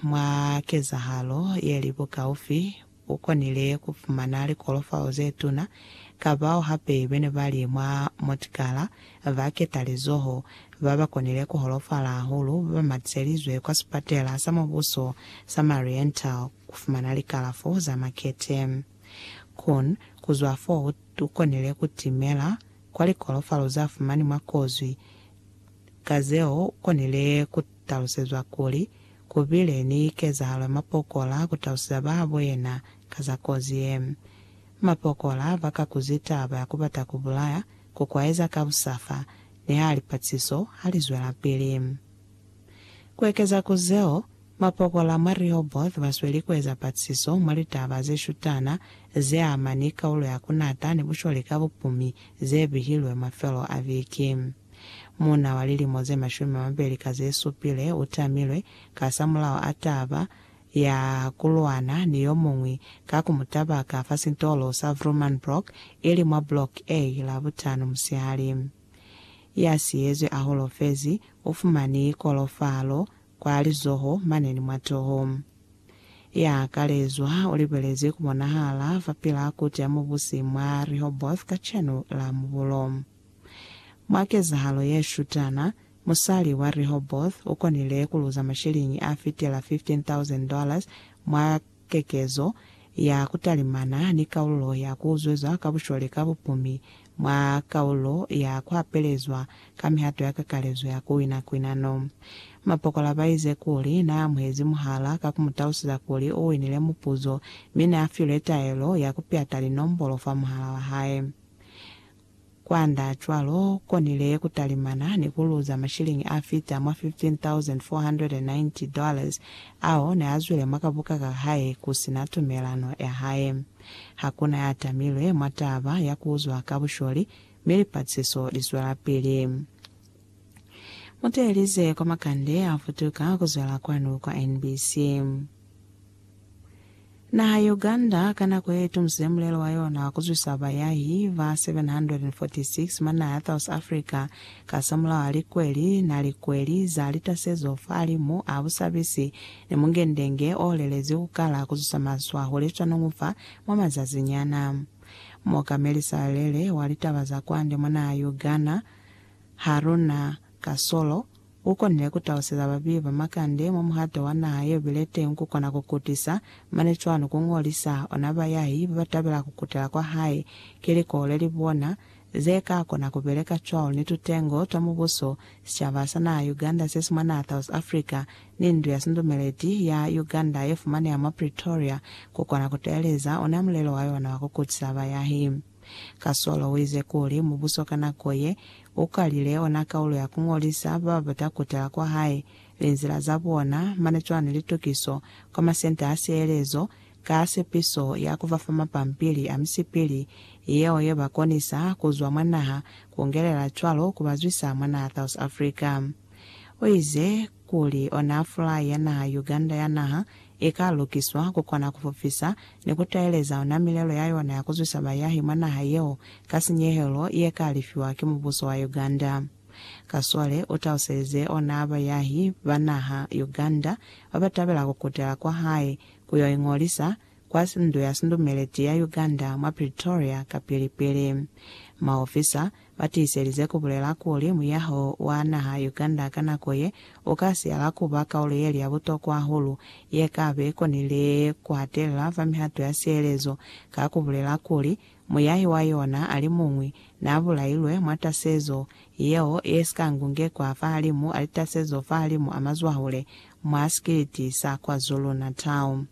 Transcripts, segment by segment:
Mwa kezahalo ye li bukaufi, u konile ku fumana likolofao ze tuna ka bao hape be ne ba li mwa motikala ba ketalizoho ba ba konile ku holofala hahulu ba ba matiselizwe kwa Sipatela sa Mubuso sa Mariental ku fumana likalafo za makete. Kun, ku zwa fo u, u konile ku timela kwa likolofalo za fumani mwa kozwi ka zeo u konile ku talusezwa kuli, Ku bile ni kezahalo ya mapokola ku talusiza bahabo yena ka za kozi ye. Mapokola ba kakuzi taba ya ku bata ku bulaya, ku kwaeza ka busafa, ni ha lipatsiso ha li zwelapili. Ku ekeza ku zeo, mapokola mwa Rehoboth ba sweli ku eza patsiso mwa litaba ze shutana ze ama ni kaulo ya ku nata ni busholi ka bupumi ze bihilwe mafelo a viki. Muuna wa lilimo ze mashumi a mabeli ka ze supile u tamilwe kasamulaho a taba ya ku lwana ni yo muñwi ka ku mu tabaka fa sitolo sa Vroomanbroek, ili mwa Block A, Labutano musihali. Ya siyezwi a holofezi, u fumani kolofalo kwa lizoho mane ni mwa toho. Ya kalezwa u libelezi ku bonahala fapilaa Koti ya Mubusi mwa Rehoboth kacenu la mubulo. Mwa kezahalo ye shutana, musali wa Rehoboth u konile ku luza masheleñi a fitela $15,000 mwa kekezo ya ku talimana ni kaululo ya ku zwezwa ka bushole ka bupumi mwa kaululo ya ku hapelezwa ka mihato ya kakalezo ya ku wina kwinano. Mapokola ba ize kuli n'a amuhezi muhala ka ku mu tausiza kuli u winile mupuzo mi n'a filwe taelo ya ku pyata linombolo fa muhala wa hae. Kwanda cwalo, konile kutalimana ni kuluza mashilingi afita mwa 15,490 dollars ao neazwile mwa kabuka ka hae kusina tumelano ya hae. Hakuna ya tamilwe mwa taba ya kuuzwa ka busholi, mi lipatsiso lizwelapili. Muteelize kwa makande a futuka kuzwala kwanu kwa NBC. Naha ya Uganda ka nako ye itumusile mulelo wa yona kuzwisa bayahi ba 746 mwa naha ya South Africa kasamulaho a likweli na likweli za litasezo fahalimu a busabisi ni mungendenge o lelezi kukala kuzwisa maswa hule swanungu fa mwa mazazinyana. Muokameli Salele wa litaba za kwande mwa naha ya Uganda, Haruna Kasolo ukonile kutaluseza babeyi ba makande mwa muhato wa naha yeo bile teñi kukona kukutisa, mane cwalo kungolisa ona bayahi babatabela kukutela kwa hae ki likole li bona zekakona kubeleka cwalo ni tutengo twa mubuso, sicaba sa naha Uganda sesi mwa naha South Africa ni ndu ya sindumeleti ya Uganda yefumaneha mwa Pretoria kukona kutaeleza ona mulelo wayona wa kukutisa bayahi. Kasolo uize kuli mubuso ka nako ye ukalile ona kaulo ya kuñolisa bababata kutala kwa hae, linzila za bona, mane cwani litukiso kwa masenta a sielezo ka sepiso ya kubafa mapampili a misipili yeo yebakonisa kuzwa mwa naha, kungelela cwalo kubazwisa mwa naha South Africa. Uize, kuli ona fulai ya naha Uganda ya naha ika lukiswa kukona kufufisa ni kutaeleza ona milelo ya yona ya kuzwisa bayahi mwa naha yeo ka sinyehelo yeka lifiwa ki mubuso wa Uganda. Kasole utauselize ona bayahi ba naha Uganda babatabela kukutela kwahae kuyo ingolisa kwa Ndu ya Sindumeleti ya Uganda mwa Pretoria kapili pili maofisa Ba tiiselize ku bulela kuli muyaho wa naha Uganda ka nako ye u ka siyala ku ba kaulo ye li ya butokwa hahulu ye ka be konile ku hatelela fa mihato ya sielezo ka ku bulela kuli muyahi wa yona a li muñwi n'a bulailwe mwa tasezo yeo ye si ka ngungekwa fahalimu a litasezo fahalimu a mazwahule mwa sikiliti sa KwaZulu-Natal.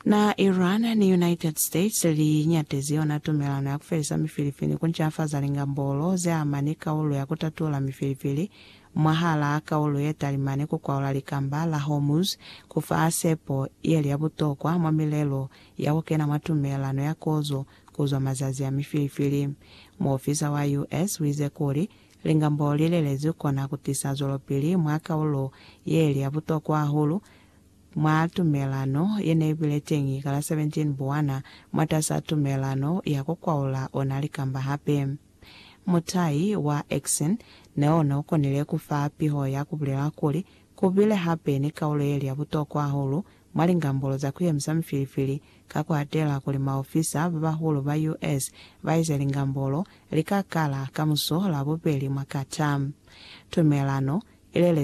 Na Iran ni United States li nyatezi yona tumelano ya ku felisa mifilifili ni ku ncafaza lingambolo ze ama ni kaulo ya ku tatula mifilifili mwahala kaulo ye talimani ku kwaula Likamba la Hormuz, ku fa sepo ye li ya butokwa mwa milelo ya ku kena mwa tumelano ya kozo ku zwa mazazi a mifilifili. Muofisa wa US u ize kuli, Lingambolo li lelezwi kona ku tisa zwelopili mwa kaulo ye li ya butokwa hahulu, Mwa tumelano ye ne i bile teñi ka la 17 Buwana, mwatas'a tumelano ya ku kwaula ona likamba hape, mutai wa Exene ne o ne u konile ku fa piho ya ku bulela kuli, Ku bile hape ni kaulo ye li ya butokwa hahulu mwa lingambolo za ku yemisa mifilifili, ka ku atela kuli maofisa ba bahulu ba US. ba ize lingambolo li ka kala ka muso la bubeli mwa Qatar. Tumelano i lelezwi